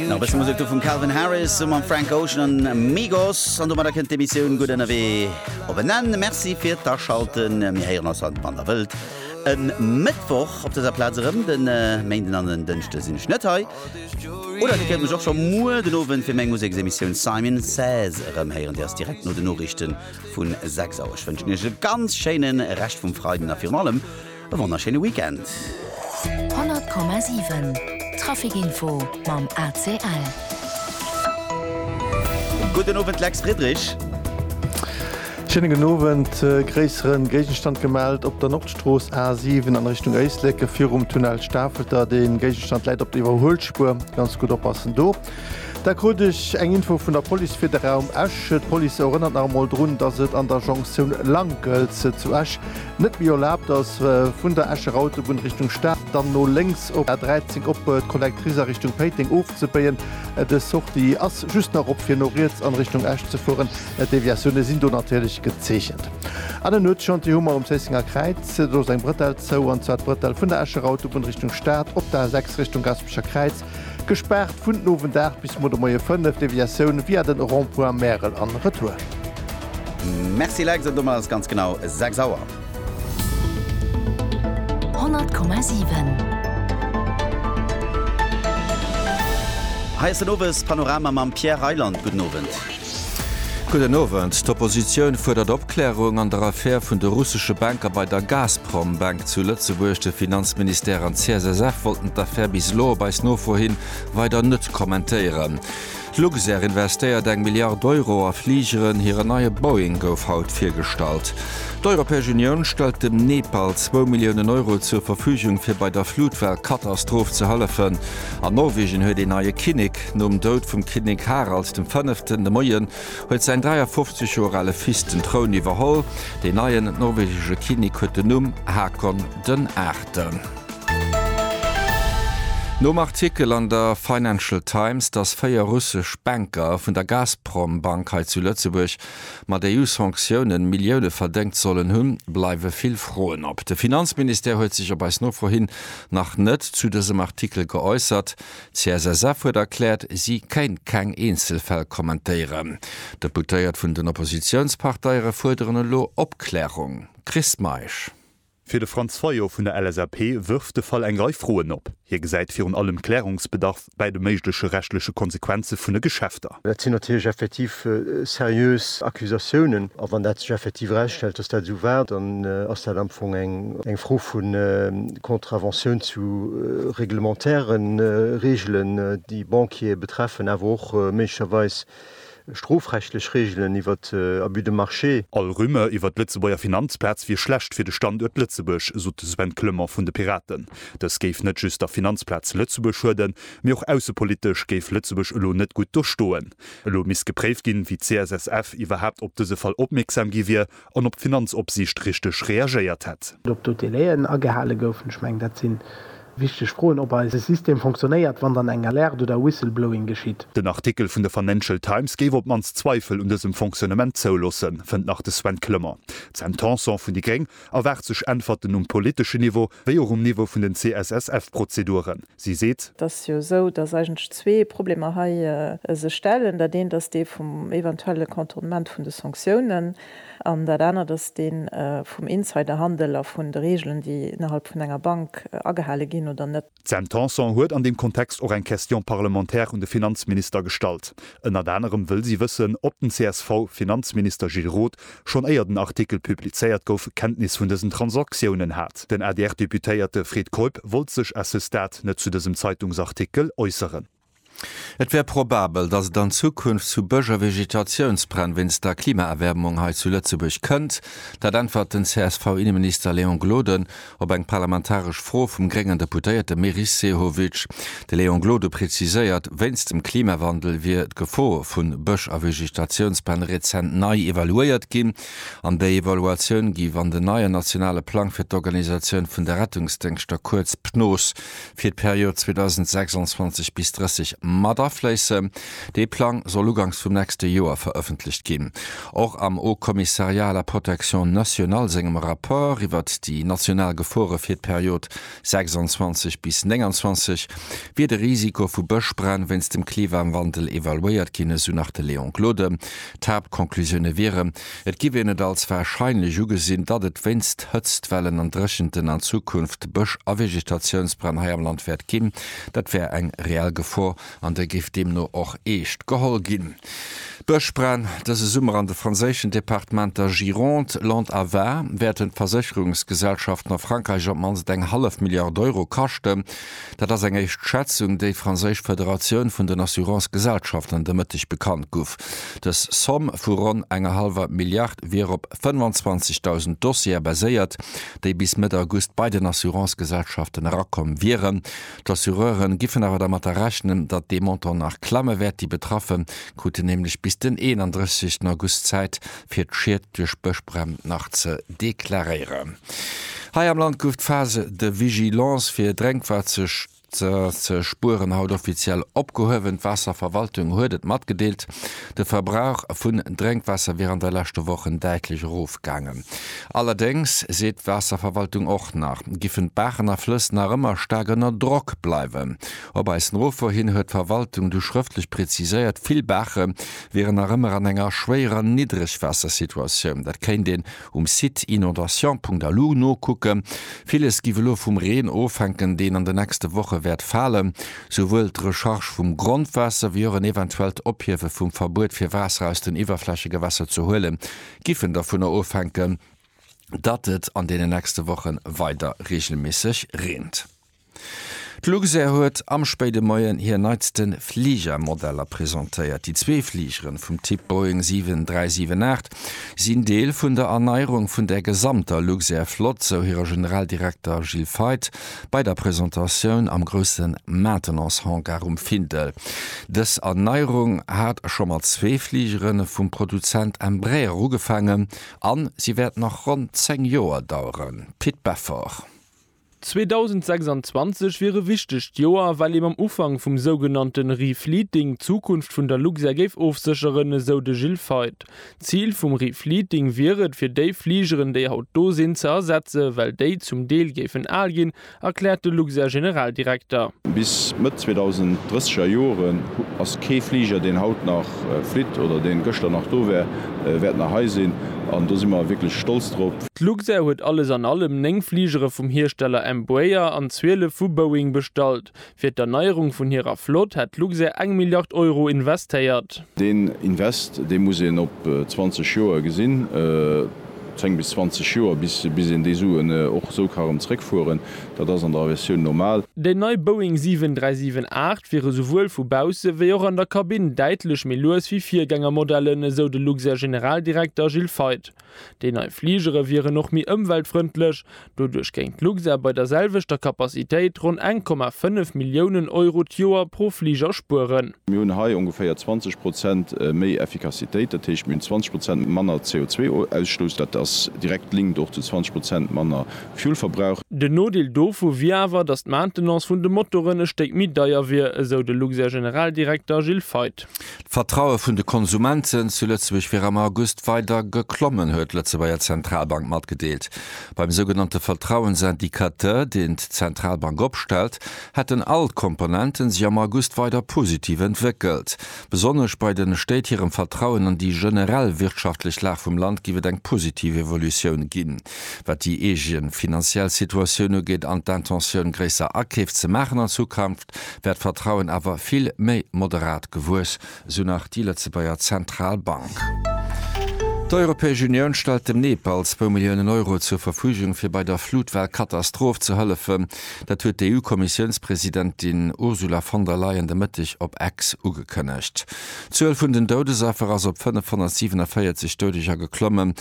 Nach bësse Musek do vum Calvin Harris summer am Frank Ocean an Migos an do mat der kënnt d'Emissioun gutt ënnerwee op en Enn. Merci fir d'Aschalten. Mir héieren ass haut wann der wëllt. E Mëttwoch op dëser Plaz erëm. Den äh, Méinden an den Dënschde sinn ech net hei. Oder Dir kënnt mech och scho muer den Owend fir meng Museksemissioun Simon Says erëm héieren. Dir ass direkt no den Noriichten vun 6 Auer. Ech wënschen Iech e ganz schéinen Rescht vum Freiden a virun allem E wonnerschéine Weekend. 100,7 Traficinfo mam ACL. Gudden Owend Lex Friedrich. Schénegen Owend. E gréissere Géigenstand gemellt op der Nordstrooss A7 an Richtung Éislek virum Tunnel Stafelter. De Géigenstand läit op der Iwwerhuelspuer. Ganz gutt oppassen do. Da krut ech eng Info vun der Police fir de Raum Esch. D'Police erënnert nach emol drun, dass et an der Jonktioun Lankels zu Esch net méi erlaabt ass, vun der Escher Autobunn Richtung Stad dann no lénks op d'A13 op d'Connectrice a Richtung Péiteng ofzebéien. Dës Sortie ass just nach op, fir no riets an Richtung Esch ze fueren. D'Deviatioune sinn do natierlech gezeechent. An en Nuetschantier hu mer um Zéissenger Kräiz. Do ass eng Brëtell zou, an zwar d'Brëtell vun der Escher Autobunn Richtung Stad op d'A6 Richtung Gaspecher Kräiz. Gespaart vun den Owend 8 bis muer de Moie 5, Deviatioun via den Rond-Point Märel an Retour. Merci Lex, an domat ass ganz genau 6 Auer. 100,7. Hei ass den Owespanorama mam Pierre Reyland. Gudden Owend. Gudden Owend. D'Oppositioun fuerdert Opklärung an der Affär vun de russesche Banker bei der Gazprom Bank zu Lëtzebuerg. De Finanzministère an d'CSSF wollten d'Affär bis elo, op eis Nofro hin, weider net kommentéieren. D'Luxair investéiert eng Milliard Euro a Fligeren, hiren neie Boeing gouf haut virgestallt. D'Europäesch Unioun stellt dem Nepal zwou Milliounen Euro zur Verfügung fir bei der Flutwell-Katastroph ze hëllefen. An Norwegen huet een neie Kinnek. Dag nom Doud vum Kinnek Harald dem Fënneften de Moien huet säin 53 Joer ale Fils den Troun iwwerholl. Deen neien norwegesche Kinnek huet den Numm Hakon den Aachten. Nom Artikel an der Financial Times, dass véier russesch Banker vun der Gazprom-Bank hei zu Lëtzebuerg mat EU-Sanktiounen Millioune verdéngt sollen hunn, bleiwe vill Froen op. De Finanzministère huet sech op eis Nofro hin nach net zu dësem Artikel geäussert. D'CSSF huet erkläert, si kéint keng Eenzelfäll kommentéieren. D'Deputéiert vun den Oppositiounsparteiere fuerderen elo Opklärung. Chris Meisch. Fir de Franz Fayot vun der LSAP wërft de Fall eng Rei Froen op. Hie gesäit virun allem Klärungsbedarf bäi de méigleche rechtleche Konsequenze vun de Geschäfter. Dat sinn natierlech effektiv seriös Accusatiounen. A wann dat sech effektiv erausstellt, datt dat esou war, dann ass dat am Fong eng Fro vu Contraventioun zu reglementäre Reegelen, déi Banquiere betreffen, awer och méiglecherweis strofrechtlech Reegelen iwwer Abus de marché. All Rumeur iwwer d'Lëtzebuerger Finanzplaz wier schlecht fir de Standuert Lëtzebuerg, sot de Sven Clement vun de Piraten. Dës géif net just der Finanzplaz Lëtzebuerg schueden, mee och aussepolitesch géif Lëtzebuerg elo net gutt do stoen. Elo misst gepréift ginn, wéi d'CSSF iwwerhaapt op dëse Fall opmierksam gi wier, an op d'Finanzopsiicht richteg reagéiert hätt. Ob do d'Délai'en agehale goufen, ech mengen dat si wichteg Froen, ob eise System fonctionnéiert, wann dann eng Alerte oder Whistleblowing geschitt. Den Artikel vun der Financial Times géif op d'mannst Zweifel un dësem Fonctionnement zouloossen, fënnt nach de Sven Clement. D'Sam Tanson vun déi gréng erwaart sech Äntwerten um politeschen Niveau, wéi och um Niveau vun den CSSF-Prozeduren. Si seet. Et ass jo esou, dass eigentlech zwee Problemer hei sech stellen. Dat eent ass dee vum eventuelle Contournement vun de Sanktiounen an dat anert ass dee vum Insiderhandel a vun de Reegelen, déi innerhalb vun enger Bank agehale ginn oder net. D'Sam Tanson huet an deem Kontext och eng Question parlementaire un de Finanzminister gestallt. Ënnert anerem wëll si wëssen, ob den CSV-Finanzminister Gilles Roth Schonn éier den Artikel publizéiert gouf, Kenntnis vun dësen Transaktiounen hat. Den ADR-Deputéierte Fred Keup wollt sech à ce stade net zu dësem Zeitungsartikel äusseren. Et wär probabel, datt et an Zukunft zu Bëschervegetatiounsbränn wéinst der Klimaerwäermung hei zu Lëtzebuerg kënnt. Dat äntwert den CSV-Inneminister Léon Gloden Op eng parlamentaresch Fro vum gréngen Deputéierte Meris Sehovic, de Léon Gloden preziséiert, wéinst dem Klimawandel wier d'Gefor vu Bësch a Vegetatiounspläne rezent nei evaluéiert ginn. An déi Evaluatioun géif an den neien nationale Plang fir d'Organisatioun vun de Rettungsdéngschter, kuerz PNOS, fir d'Period 2026 bis 30 mat afléissen. Dee Plang soll uganks vum nächste Joer verëffentlecht ginn. Och am Haut Commissariat à la protection nationale sengem Rapport iwwert déi national Gefore fir d'Period 26 bis 29 wier de Risiko vu Bëschbränn wéinst dem Klimawandel evaluéiert ginn, esou nach de Léon Gloden. D'Haaptconclusioune wieren, Et giff een et als wahrscheinlech ugesinn, datt et wéinst Hëtztwellen an Dréchenten an Zukunft Bësch a Vegetatiounsbränn hei am Land wäert ginn. Dat wär eng reell Gefor an der géif deemno och eescht geholl ginn. D'Bëschbränn dëse Summer an de franséischen Departementer Gironde, Landes a Var wäerten d'Versécherungsgesellschaften a Frankräich op d'mannst eng hallef Milliard Euro kaschten. Dat ass eng éischt Schätzung, déi franséisch Federatioun vun den Assurance-Gesellschaften de Mëtteg bekannt guff. Dës Somm vu ronn enger hallwer Milliard wier op 25.000 Dossiere baséiert, déi bis Mëtt August bei den Assurance-Gesellschaften erakomm wieren. D'Assureure giffen awer dermatter rechnen, datt dee Montant nach klamme wäert. Déi Betraffe kruten nämlech bis den 31 August Zäit, fir d'Schied duerch Bëschbränn nach ze deklaréieren. Hei am Land gouf d'Phase de vigilance fir Drénkwaasser ze spueren haut offiziell opgehuewen. D'Waasserverwaltung huet et matgedeelt, de Verbrauch vun Drénkwaasser wier an de leschte Wochen däitlech erofgaangen. Allerdéngs seet d'Waasserverwaltung och nach, giffen d'Baachen a Flëss nach ëmmer staark ënner Drock bleiwen. Op eis Nofro hin huet d'Verwaltung du schrëftlech preziséiert, vill Baache wieren nach ëmmer an enger schwéierer Niddregwaassersituatioun. Dat kéint een um Site inondations.lu nokucken. Villes giff elo vum Reen ofhänken, deen an de nächste Woche wäert falen. Souwuel d'Recharge vum Grondwaasser wéi och en eventuellt Ophiewe vum Verbuet fir Waasser aus den Iwwerflächegewässer ze huelen, giffen dovunner ofhänken, datt et an deenen nächste Wochen weider reegelméisseg reent. D'Luxair huet am spéide Moien hir neitste Fligermodeller presentéiert. Déi zwee Fligeren vum Typ Boeing 7378 sinn Deel vun der Erneierung vun der gesamter Luxair-Flott, sou hire Generaldirekter Gilles Feith bei der Presentatioun am grousse Maintenance-Hangar um Findel. Dës Erneierung hat scho mat zwee Fligere vum Produzent Embraer ugefaangen a si wäert nach ronn 10 Joer daueren, Pit Beffort. 2026 wier e wichtegt Joer, well ee mam Ufank vum sougenannte Refleeting d'Zukunft vun der Luxair géif ofsécheren, esou de Gilles Feith. D'Zil vum Refleeting wier et, fir déi Fligeren, déi haut do sinn, ze ersetzen, well déi zum Deel géifen al ginn, erkläert de Luxair-Generaldirekter. Bis Mëtt 2030er Joren ass kee Fliger, deen haut nach flitt oder dee gëschter nach do war, wäert nach hei sinn. An do si mer wierklech stolz drop. D'Luxair huet alles an allem 9 Fligere vum Hiersteller Embraer an 12 vu Boeing bestallt. Fir d'Erneierung vun hirer Flott hätt d'Luxair eng Milliard Euro investéiert. Deen Invest, dee muss een op 20 Joer gesinn, 10 bis 20 Joer, bis een déi Suen och esou ka erëm zréckfueren. Dat ass an der Aviatioun normal. Déi nei Boeing 7378 wier esouwuel vu bausse wéi och an der Kabinn däitlech méi lues wéi Virgängermodellen, esou de Luxair-Generaldirekter Gilles Feith. Déi nei Fligere wieren och méi ëmweltfrëndlech. Doduerch géing d'Luxair bei der selwechter Capacitéit ronn eng Komma fënnef Milliounen Euro d'Joer pro Fliger spueren. Mir hunn hei ongeféier 20 Prozent méi Effikassitéit, dat heescht, mir hunn 20 Prozent manner CO2-Ausstouss. Dat ass direkt linkt och zu 20 Prozent manner Fuel-Verbrauch. Den Nodeel dovu wier awer, datt d'Maintenance vun de Motoren e Stéck méi deier wier, esou de Luxair-Generaldirekter Gilles Feith. D'Vertraue vun de Konsumenten zu Lëtzebuerg wier am August weider geklommen, huet d'Lëtzebuerger Zentralbank matgedeelt. Beim sougenannte Vertrauensindicateur, deen d'Zentralbank opstellt, hätten all d'Komponenten sech am August weider positiv entwéckelt. Besonnesch bei de Stéit hirem Vertrauen an déi generell wirtschaftlech Lag vum Land géif et eng positiv Evolutioun ginn, wat déi eege finanziell Situatioun ugeet an d'Intentioun, gréisser Akeef ze maachen an Zukunft. wär d'Vertrauen awer vill méi moderat gewuess, esou nach déi Lëtzebuerger Zentralbank. D'Europäesch Unioun stellt dem Nepal zwou Milliounen Euro zur Verfügung, fir bei der Flutwell-Katastroph ze hëllefen. Dat huet d'EU-Kommissiounspresidentin Ursula von der Leyen de Mëtteg op X ugekënnegt. D'Zuel vun den Doudesaffer ass op 547 Doudeger geklommen.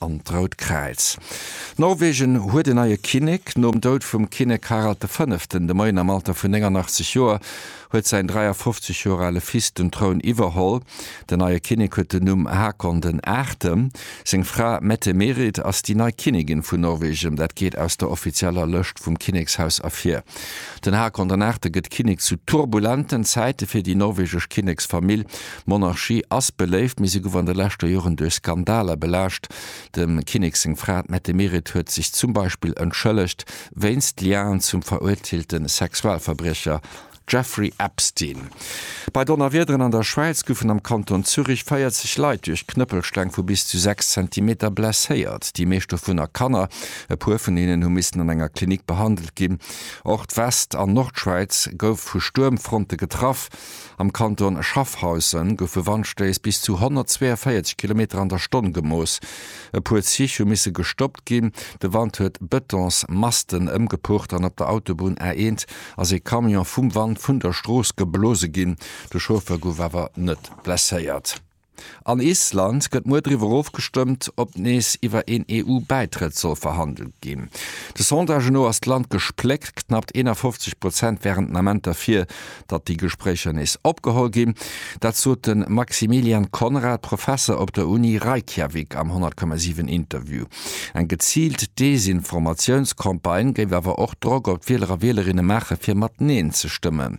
an d'Rout Kräiz. Norwegen huet en neie Kinnek. Nom Doud vum Kinnek Harald de Fënneften de Moien am Alter vun 89 Joer huet säin 53 Joer ale Fils den Troun iwwerholl. Den neie Kinnek huet den Numm Hakon den Aachte. Seng Fra Mette-Merit ass déi nei Kinnigin vun Norwegen. Dat geet aus der offizieller Lëscht vum Kinnekshaus ervir. Den Hakon den Aachte gëtt Kinnek zu turbulenten Zäite fir déi norwegesch Kinneksfamill. D'Monarchie ass beléift, mee se guff an de leschter Joren duerch Skandaler belaascht. Dem Kinnek seng Fra, d'Mette Meret, huet sech zum Beispill entschëllegt wéinst Liaen zum verurteelte Sexualverbriecher Jeffrey Epstein. Bei Donnerwiederen an der Schwäiz goufen am Kanton Zürich 40 Leit duerch Knëppelsteng vu bis zu 6 Zentimeter blesséiert, déi meescht dovunner Kanner. E puer vun hinnen hu missen an enger Klinik behandelt ginn. Och d'West an Nordschwäiz gouf vu Stuermfronte getraff. Am Kanton Schaffhausen goufe Wandstéiss bis zu 142 Kilometer an der Stonn gemooss. E puer Zich hu misse gestoppt ginn. De Wand huet Betonsmasten ëmgepucht an op der Autobunn A1 ass ee Camion vum Wand vun der Strooss geblose ginn. De Chauffeur gouf awer net blesséiert. An Island gëtt muer driwwer ofgestëmmt, ob nees iwwer een EU-Bäitrëtt soll verhandelt ginn. De Sondagë no ass d'Land gespléckt, knappt 51 Prozent wären den Ament derfir, datt déi Gespréicher nees opgeholl ginn. Dat sot de Maximilian Conrad, Professer op der Uni Reykjavik am 100,7 Interview. Eng geziilt Desinformatiounscampagne géif awer och Drock op d'Wieler a Wielerinne maachen, fir mat Neen ze stëmmen.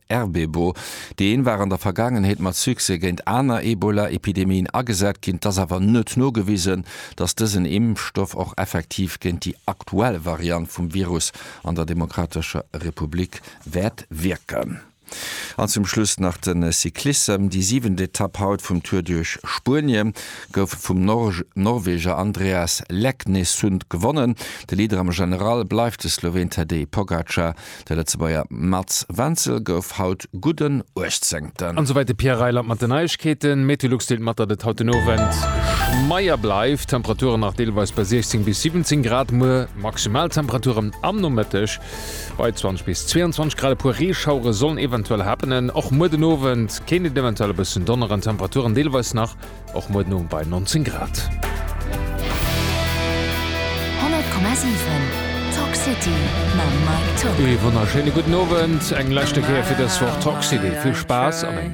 RBBO. Déi een war an der Vergaangenheet mat Succès géint aner Ebola-Epidemien agesat ginn. Et ass awer net nogewisen, datt dësen Impfstoff och effektiv géint déi aktuell Variant vum Virus an der Demokratescher Republik wäert wierken. An zum Schluss nach de Cyclissem. Déi siwent Etapp haut vum Tour duerch Spuenie gouf vum Norweger Andreas Leknesund gewonnen. De Leader am General bleift de Sloween Tadej Pogacar. De Lëtzebuerger Mats Wenzel gouf haut gudden Uechtzéngten. An souwäit de Pierre Reyland mat den Neiegkeeten. D'Meteolux deelt mat, datt et haut den Owend schmeier bleift, d'Temperature nach deelweis bei 16 bis 17 Grad. Muer Maximaltemperature am Nomëtteg bei 20 bis 22 Grad. E puer Reeschauere sollen eventuell happenen. Och muer den Owend kéint et eventuell e bëssen donneren, d'Temperaturen deelweis nach. Och muer den Owend bei 19 Grad. 100,7 Talk City mam Mike Tock. Ee wonnerschéine gudden Owend, eng leschte Kéier fir dës Woch Talk City. Vill Spaass an eng.